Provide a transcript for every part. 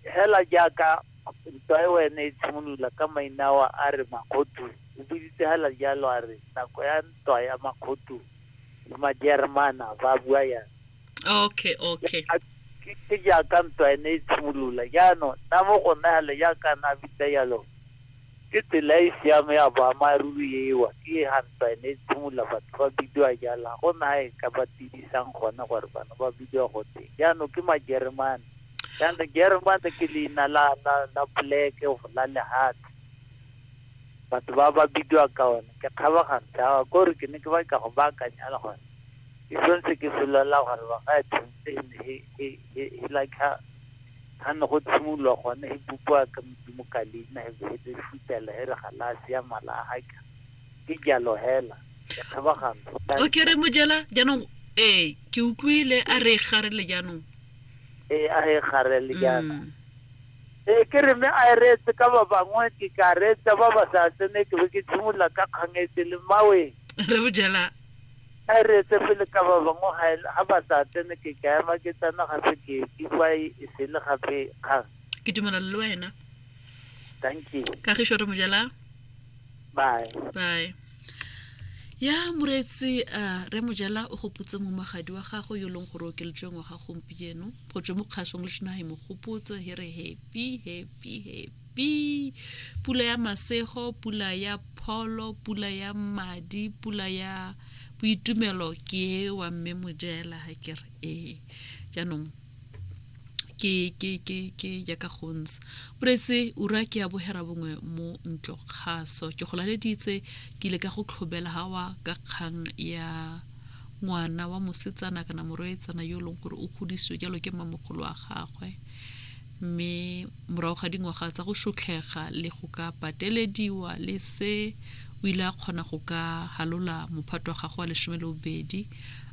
Hela jaaka ntwa eo ene e tshimolola ka mainao a re Makgotu, o buisitse hela jalo a re nako ya ntwa ya Makgotu le Majeremana ba bua yang. Okay, okay. Ke jaaka ntwa ene e tshimolola jaanong nna mo go nna hela jaaka na bitsa jalo ke tsela e siame ya boammaaruri ewa ke ha ntwa ene e tshimolola batho ba bidiwa jalo ga go na e ka ba tibisang gone gore bana ba bidiwa gote jaanong ke Majeremane. ya the german ke leina la la la poleke go la lehathi batho ba ba bidiwa ka one ke kgabagantse a kore ke ne ke ba ka go baakanyala gore ke sentse ke solola gore ba ga tshwanetse e ne e- e- e- e like ha ga ne go tshimolola gone e bopiwa ka modimo ka leina e be e le futela e re galase ya malahaka ke jalo hela ke kgabagana o ke re mojela jaanong ee ke utlwile a re gare le jaanong ee a e gare le jaana mm. ee ke re mme a e reetse ka ba bangwe ke ka reetsa ba ba sa tsene ke be ke tshimolola ka kgangetse le mawe re bojela a e reetse pele ka ba bangwe ga ba sa tsene ke ka ema ke tsena gape ke kifa e sele gape kgang ke dumelana le wena thank you kagišo re mojela bye bye ya moreetsi uh, re mojela o gopotse mo magadi wa gago yo e leng gore o keletsweng wa ga gompieno go tswe mo kgasong le sena e mo gopotse he re happy happy happy pula ya masego pula ya pholo pula ya madi pula ya boitumelo ke wa mme mojela ha ke re ee jaanong ke ke ke ke jaaka go ntse pretse ura ke ya bogera bongwe mo ntlo kgaso ke go laleditse ke ile ka go tlhobela gawa ka kgang ya ngwana wa mosetsana kana moroetsana yo e leng gore o godisitswe jalo ke mmamogolo wa gagwe mme Morago ga dingwaga tsa go šotlhega le go ka patelediwa le se, o ile a kgona go ka halola mophato wa gagwe wa lesome le bobedi,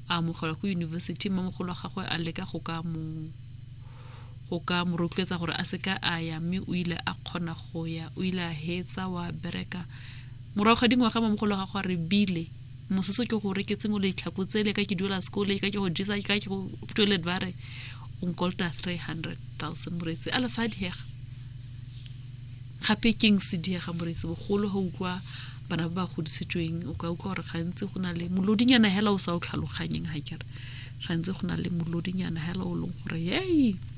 a amogelwa ko yunibesithi. Mmamogolo wa gagwe a leka go ka mo go ka mo rotloetsa gore a se ka a ya mme o ile a kgona go ya o ile a hetsa wa bereka morago ga dingwaga mamogolo wa gago a re bile mososo ke gore ke tsengwe letlhako tsele ka ke duela sekole ka ke go jesa ka ke go toilet ba re o nkolta 300000 moreetsi a le sa diega gape keng se diega moreetsi bogolo ga utlwa bana ba ba godisitsweng o ka utlwa gore gantsi go na le molodinyana hela o sa o tlhaloganyeng ga kere gantsi go na le molodinyana hela o leng gore yei